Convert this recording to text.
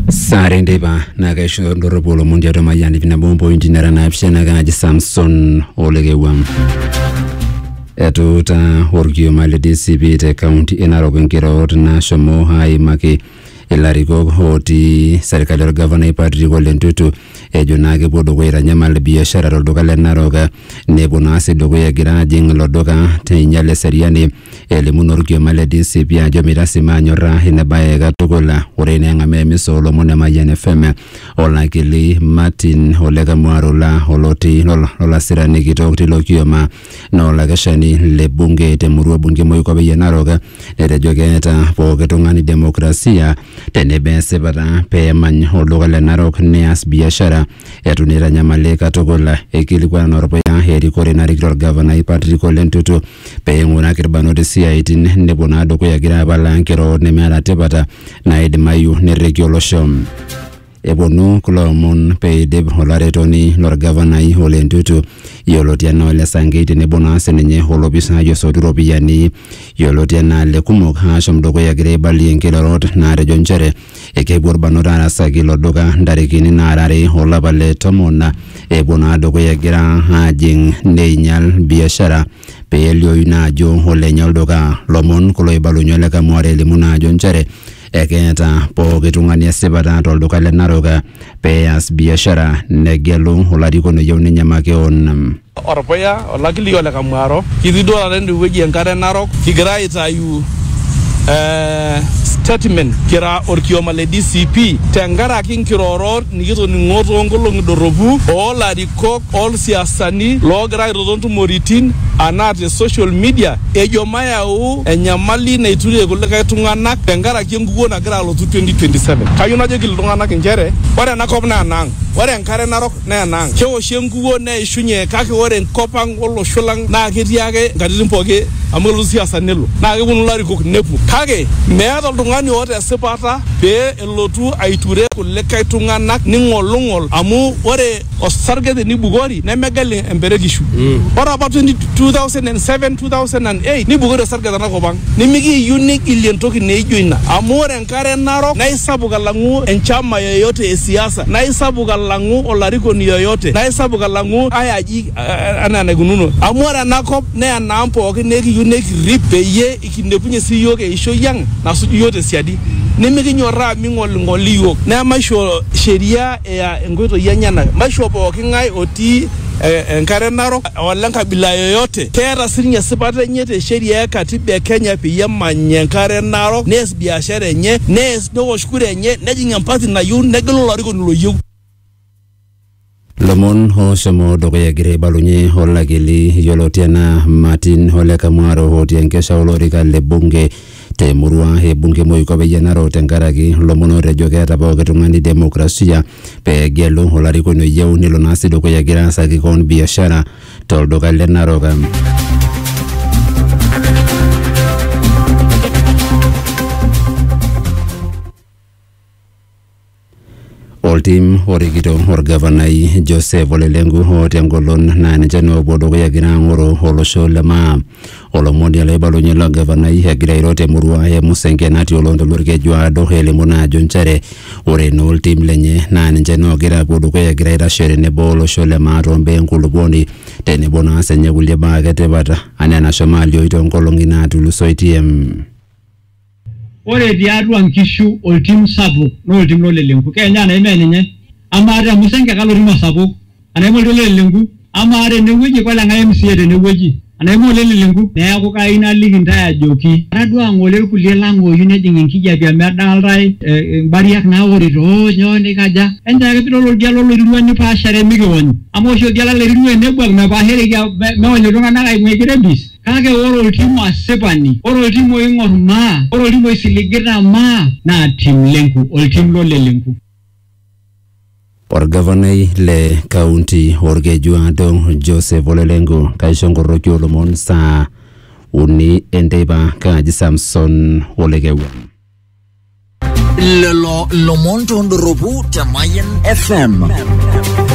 sare ndeipa naa kaisho ndorropu olomon tiatua mayiani pina bomo pointi nara naapishana kanaji samson olekewua etuuta orkioma le dcp te kaunti e narok nkirorot naashomo aimaki ilarikok ootii serkali orgavanai Patrick Ole Ntutu ejo naa kepuo dukuya aitanyamal biashara tolduka le Narok nepuo naa sii dukuya egira ajing ilo duka teinyal eseriani Elimu naa olkioma le DCP ajo meitasima anyorra ina bae katukul. Ore naa eng'amaa emisa oo lomon e Mayian FM olakili Martin Ole Kamwarula oloti lolasirani kitok tilo kioma naa olakeshani le bunge te murua bunge e Moikopei e Narok netejo keeta pooki tung'ani demokrasia tenebo esipata pee emany olduka le Narok neas biashara eitu naa eitanyamali katukul. Eikilikuana naa olpuya erikore narikito olgavanai Patrick Ole Ntutu pee eing'uraki irbanot isiaitin nepuo naa dukuya egira apalaa nkirorot nemeeta tipata naaidimayu nerriki olosho. Eponu kulo omon peidip olaretoni lorgavanai Ole Ntutu yioloti anaa Ole Sankei tenebo naa sininye olopisai osotu iropiyiani yioloti anaa Lekumok aashom dukuya egira aibalie nkirorot naatejo nchere Ekepuo irbanot aarasaki ilo duka ntarikini naara are o lapa le tomon. Epuo naa dukuya egira aajing neinyal biashara pee eliooyu naa ajo olenye olduka. Lomon kulo oibalunye Ole Kamuare elimu naa ajo nchere ekeeta pooki tung'ani esipata to lduka le Narok pee eas biashara negelu olarikoni oyieu ninye makeon. Orpuya, olakili o Lekamwaro, kitii duo taata ende wueji e Nkare Narok kigira aitayu eh, statement kira orkioma le DCP tenkaraki nkirorot nikitoning'o too nkolong'i dorropu oo larikok oo lsiasani loogira aitoto ntumoritin anaa te social media ejo mayau enyamali naiturie kulikae tung'anak tenkaraki enkukuo nagira alotu 2027. Kayieu najoki iltung'anak inchere ore ena kop naa enaang', ore Enkare Narok naa ena ang. Keoshi enkukuo neishunye kake ore enkop ang olosho lang naa ketii ake nkatitin pooki amu kelotu siasa nelo naa kepuonu ilarikok nepuo kake meeta oltung'ani oota esipata pee elotu aiture kulikae tung'anak ning'olung'ol amu ore osarge tenibukori nemegel emperekishu. Ore apa 20 2007, 2008 nibukori osarge tenakop ang nimikiiyieu nigilie entoki naijo ina amu ore Enkare narok naa isapuk alang'u enchama yoyote e siasa, naa isapuk alang'u olarikoni yoyote, naa isapuk alang'u ai aji anaa enaikununo. Amu ore ena kop naa enaang' pooki naa ekiyieu nikirrip peyie kilepunye sii iyiook eishoi ang' nasuju iyiook te siadi. Nimikinyorraa ming'oling'oli iyiook. Naa maisho sheria eya inkoitoi enyena. Maisho pooki ng'ae otii enkare narok ole nkabila yoyote. Keeta sininye esipata enye te sheria e katiba e Kenya peyie emany enkare narok, neas biashara enye, neas neosh kura enye, nejing empati nayieu, negelu olarikoni loyieu. Lomon ooshomo dukuya egira aibalunye olakili yioloti anaa Martin Ole Kamwaro otii enkesha olorika le bunge Te murua e bunge Moiko peyie enaro tenkaraki lomon ootejo keeta pooki tung'ani demokrasia pee egelu olarikoni oyieu nelo naa sii dukuya egira aasaki koon biashara tolduka le Narok. Oltim orikito orgavanai Joseph Ole Lenku oo tengolon naa ninche naa oopuo dukuya egira aang'oro olosho le maa. Olomoni ele oibalunye ilo gavanai egira airo temurua e Musenke natii oloontoluo Olkeju aado elimu naa ajo nchere ore naa oltim lenye naa ninche naa oogira aapuo dukuya egira aitashe tenebo olosho le maa tombaa enkulupuoni tenebo naa siinye kulie baa ake etipat enaa enashomo alioi toonkolong'i naatulusoitie. Ore tiatua nkishu oltim sapuk naa oltim lo lelenku. Keenyu anai mee ninye? Amaa te musenge kalo tim osapuk? Anai mee oltim lo lelenku? Amaa tene wueji kole ng'ae MCA tene wueji? Anai mee ole lelenku? Neaku kayieu naliki intae ajoki etaduaa ng'ole ilkulie lang ooyieu nejing enkijape amu edaaltae imbariak naaworito oo nyoo neikaja. Enchoo ake pidol oldia lo loirirua nipaashare mikiwony. Amaa oshi oldia lo loirirua enebuak mepaashareki meony iltung'ana aing'uaa eji rebis. Kake ore oltim asipani, ore oltim oing'or maa, ore oltim oisiligita maa, naa tim lenku, oltim lo lelenku. Olgavanai le kaunti olkeju aado Joseph Ole Lenku kaisho nkoroki oo lomon saa uni enteipa kaaji Samson Ole Kewuon. Lelo lomon tondoropu te Mayan FM.